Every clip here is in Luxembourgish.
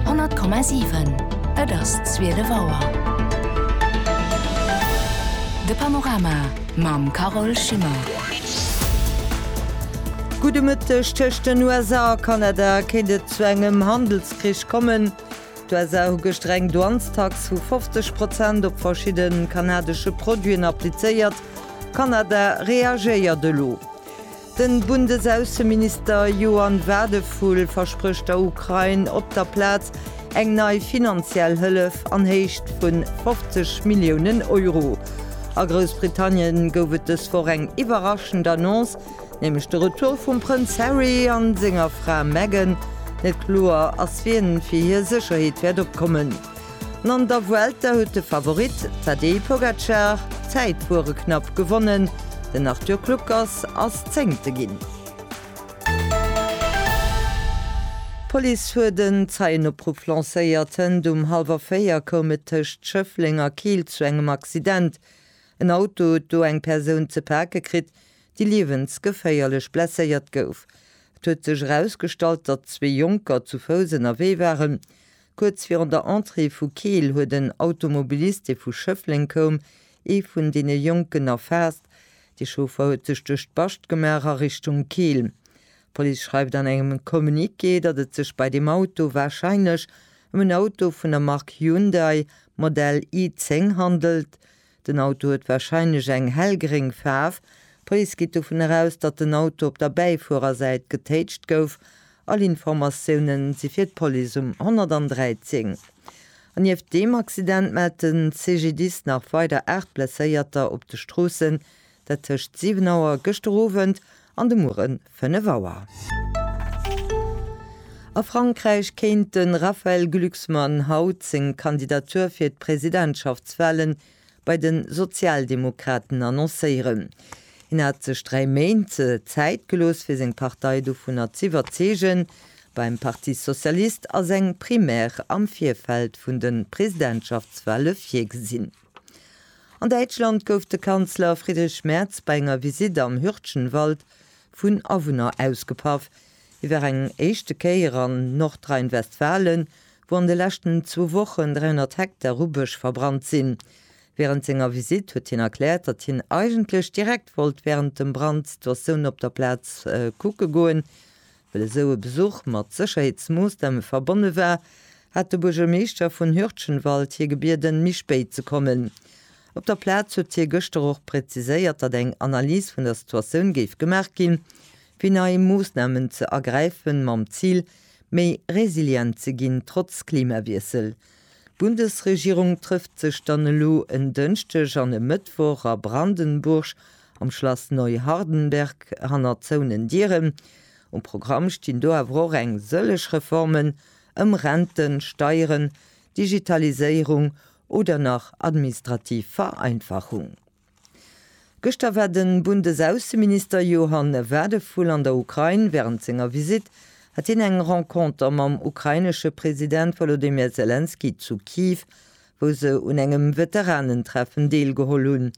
100,7 Et ass zwielef Auer. De Panorama mam Carole Schimmer. Gudde Mëtteg, Tëscht den USA a Kanada kéint et zu engem Handelskrich kommen. D'USA hu gëschter eng Douanestax vu 50 Prozent op verschidde kanadesche Produiten applizéiert. Kanada reagéiert elo. De Bundesaußenminister Johann Wadephul versprécht der Ukrain op der Plaz eng nei finanziell Hëllef an Héicht vun 50 Milliounen Euro. A Groussbritannien gouf et dës Woch eng iwwerraschend Annonce, nämlech de Retour vum Prënz Harry an senger Fra Meghan. Net kloer ass, wien fir hir Sécherheet wäert opkommen. An an der Vuelta huet de Favorit Tadej Pogacar d'Zäit bureknapp gewonnen, den Arthur Kluckers ass Zéngte ginn. D'Police huet en Zeienopruff lancéiert. Hënt um hallwer 4 koum et tëscht Schëffleng a Keel zu engem Accident. En Auto huet do eng Persoun ze pake kritt, déi liewensgeféierlech blesséiert gouf. Et huet sech erausgestallt, datt zwee Jonker zu Fouss ënnerwee waren. Kuerz virun der Entrée vu Keel huet en Automobilist, dee vu Schëffleng koum, ee vun deene Jonken erfaasst. De Chauffer huet sech duerch d'Bascht gemaach a Richtung Keel. D'Police schreift an engem Communiqué, datt et sech bei deem Auto warscheinlech ëm en Auto vun der Mark Hyundai, Modell i10, handelt. Den Auto huet warscheinlech eng hellgréng Faarf. D'Police geet dovun eraus, datt den Auto op der Bäifuerersäit getéitscht gouf. All Informatioune si fir d'Police um 113. An nieft deem Accident mellt de CGDIS nach weider 8 Blesséierter op de Stroossen. Dat tëscht 7 Auer gëschter Owend an de Muere 5 Auer. A Frankräich kéint de Raphaël Glucksmann haut seng Kandidatur fir d'Presidentschaftswahle bei de Sozialdemokraten annoncéieren. Hien hat sech dräi Méint Zäit gelooss fir seng Partei dovunner z'iwwerzeegen, beim Parti socialiste ass eng Primaire am Virfeld vun de Presidentschaftswahle virgesinn. An Däitschland gouf de Kanzler Friedrich Merz bei enger Visitt am Hürtgenwald vun Awunner ausgepaff. Hie war eng éischte Kéier an Nordrhein-Westfalen, wou an de leschten zwou Wochen 300 Hektar u Bësch verbrannt sinn. Wärend senger Visitt huet hien erkläert, datt hien eigentlech direkt wollt wärend dem Brand d'Situatioun op der Plaz kucke goen. Well esou e Besuch mat Sécherheetsmoossname verbonne war, hat de Buergermeeschter vun Hürtchenwald hie gebieden, méi spéit ze kommen. Op der Plaz huet hie gëschter och präziséiert, datt eng Analys vun der Situatioun géif gemaach ginn, fir nei Moossnamen ze ergräifen, mam Zil, méi resilient ze ginn, trotz Klimawiessel. D'Bundesregierung trëfft sech dann elo en Dënschdeg an e Mëttwoch a Brandenburg Am Schlass Neuhardenberg hannert zouenen Dieren. Um Programm stinn do awer och eng sëllech Reformen ëm Renten, Steieren, Digitaliséierung oder nach administrativ Vereinfachung. Gëschter war de Bundesaußenminister Johann Wadephul an der Ukrain. Wärend senger Visitt hat hien eng Renconter mam ukrainesche President Wolodymyr Selenskyj zu Kiew, wou se un engem Veteranentreffen deelgeholl hunn.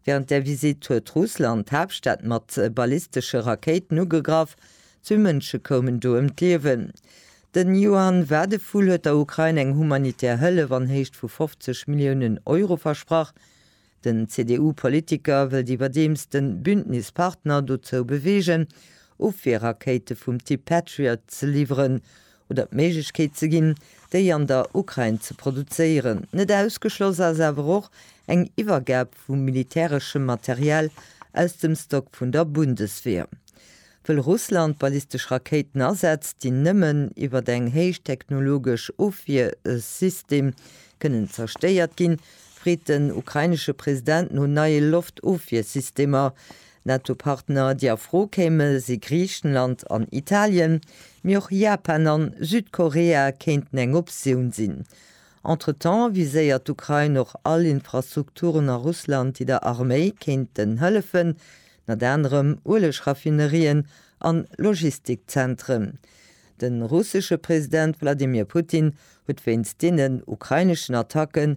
Wärend där Visitt huet Russland d'Haaptstad mat ballistesche Rakéiten ugegraff. Zwee Mënsche koumen do ëm d'Liewen. Den Yuan Wadephul huet der Ukrain eng humanitär Hëllef an Héicht vu 50 Milliounen Euro versprach. Den CDU-Politiker wëllt iwwerdeems de Bündnispartner dozou beweegen, Ofwierrakéite vum Typ Patriot ze liwweren, oder d'Méiglechkeet ze ginn, déi an der Ukrain ze produzéieren. Net ausgeschloss ass awer och eng Iwwergab vu militäreschem Material aus dem Stock vun der Bundeswehr, wëll Russland ballistesch Rakéiten asetzt, déi nëmmen iwwert eng héichtechnologesch Ofwiersystem kënnen zerstéiert ginn, freet den ukrainesche President no neie Loftofwiersystemer, Nato-Partner, déi a Fro kéime si Griichenland an Italien, mee och Japan an Südkorea kéinten eng Optioun sinn. Entretemps viséiert d'Ukrain och all Infrastrukturen a Russland, déi der Arméi kéinten hëllefen, ënner anerem Ueleg-Raffinerien an Logistikzentren. De russesche President Wladimir Putin huet wéinst deenen ukraineschen Attacken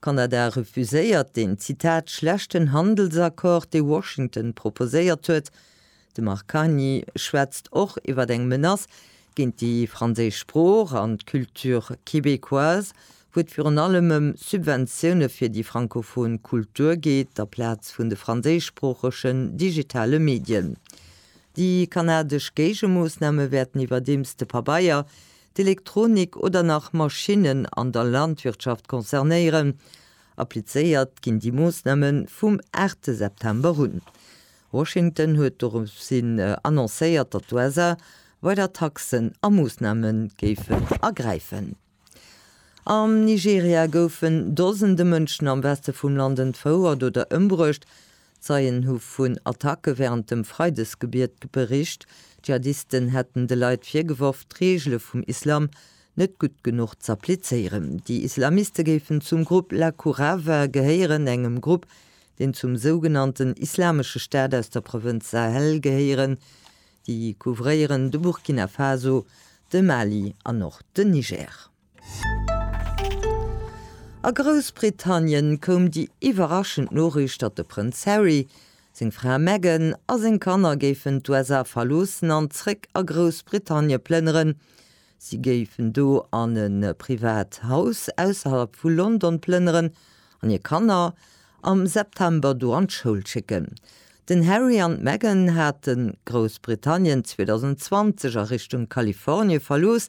Kanada refuséiert deen, Zitat, schlechten Handelsaccord, dee Washington proposéiert huet. De Marc Carnier schwätzt och iwwer eng Menace géint déi franséisch Sprooch an d'Culture québécoise, wou et virun allem ëm Subventioune fir déi francophon Kultur geet, aplaz vun de franséischsproochegen digitale Medien. Déi kanadesch Géigemoossname wäerten iwwerdeems de Pabeier, d'Elektronik oder nach Maschinnen an der Landwirtschaft concernéieren. Applizéiert ginn déi Moossname vum aachte September un. Washington huet doropshin annoncéiert, datt d'USA weider Taxen a Moossname géifen ergräifen. Am Nigeria goufen Dosende Mënschen am Weste vum Land entfouert oder ëmbruecht, Zeien hu vun Attacke wärend dem Freidesgebiet bericht. Dschihadisten hätten de Leit virgeworf, d'Reegele vum Islam net gutt genuch z'applizéieren. Déi Islamiste géifen zum Grupp Laqurava gehéieren, engem Grupp, deen zum sougenannten Islamesche Staat aus der Provënz Sahel gehéieren. Déi couvréieren de Burkina Faso, de Mali an och den Niger. A Groussbritannien koum déi iwwerraschend Noriicht, datt de Prënz Harry, seng Fra Meghan a seng Kanner géifen d'USA verloossen an zréck a Groussbritannie plënneren. Si géifen do an e privat Haus ausserhalb vu London plënneren an hir Kanner am September do an d'Schoul schécken. Den Harry an d'Meghan hate Groussbritannien 2020 a Richtung Kalifornie verlooss,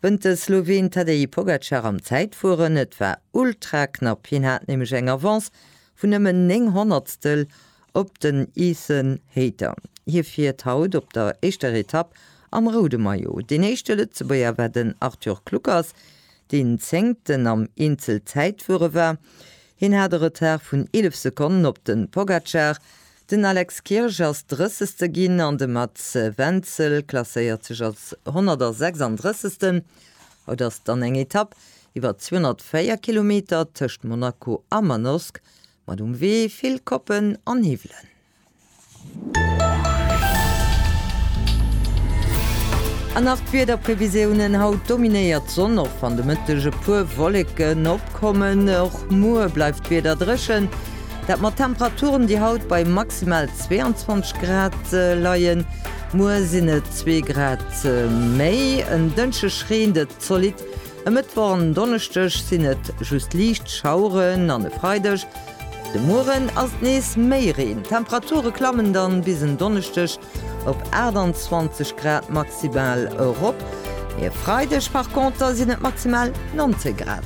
Wënnt de Sloween Tadej Pogacar am Zäitfueren. Et war ultra knapp, hien hat nämlech eng Avance vun nëmmen 9 Honnertstel op den Ethan Hayter. Hie fiert haut op der éischter Etapp am roude Maillot. Deen éischte Lëtzebuerger war den Arthur Kluckers, deen Zéngten am Eenzelzäitfuere war. Hien hat e Retard vun 11 Sekonnen op de Pogacar. Den Alex Kirsch ass Drëssegste ginn an de Mats Wenzel klasséiert sech als 136. Haut ass dann eng Etapp iwwer 204 Kilometer tëscht Monaco a Manosque mat um Wee vill Koppen an Hiwwelen. An nach d'Wiederprevisiounen, Haut dominéiert d'Sonn, och wann de Mëtteg e puer Wolleken opkommen. Och muer bleift d'Wieder dréchen. Dat mat Temperaturen, déi haut bei maximal 22 Grad leien. Muer sinn et zwee Grad méi. En Dënschdeg reent et zolidd. E Mëttwoch an en Donneschdeg sinn et just liicht Schaueren an e Freideg de Mueren ass et nees méi Reen. D'Temperature klammen dann bis en Donneschdeg Op 28 Grad maximal erop. E Freideg par conter sinn et maximal 19 Grad.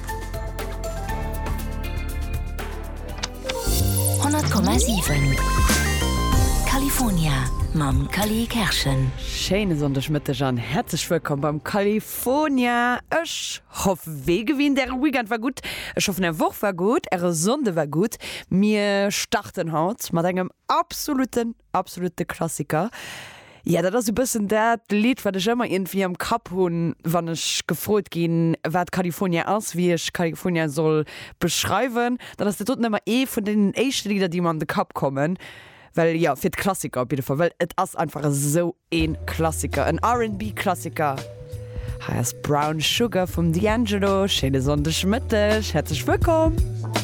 100,7 California mam Cally Kerschen. Schéine Sonndegmëtteg an häerzlech wëllkomm beim California. Ech hoff wéi gewinnt äre Weekend war gutt. Ech hoffen är Woch war gutt, äre Sonnde war gutt. Mir starten haut mat engem absolutten Absolute Klassiker. Jo, dat ass e bëssen dat Lidd, wat ech ëmmer iergendwéi am Kapp hunn, wann ech gefrot ginn, wat California ass, wéi ech California soll beschreiwen. Dann ass dat doten ëmmer ee vun deenen éischte Lidder, déi mer an de Kapp kommen. Well jo, fir d'Klassiker op jidde Fall, well et ass einfach esou ee Klassiker, en RB-Klassiker. Hei ass Brown Sugar vum D'Angelo. Schéine Sonndegmëtteg, häerzlech wëllkomm!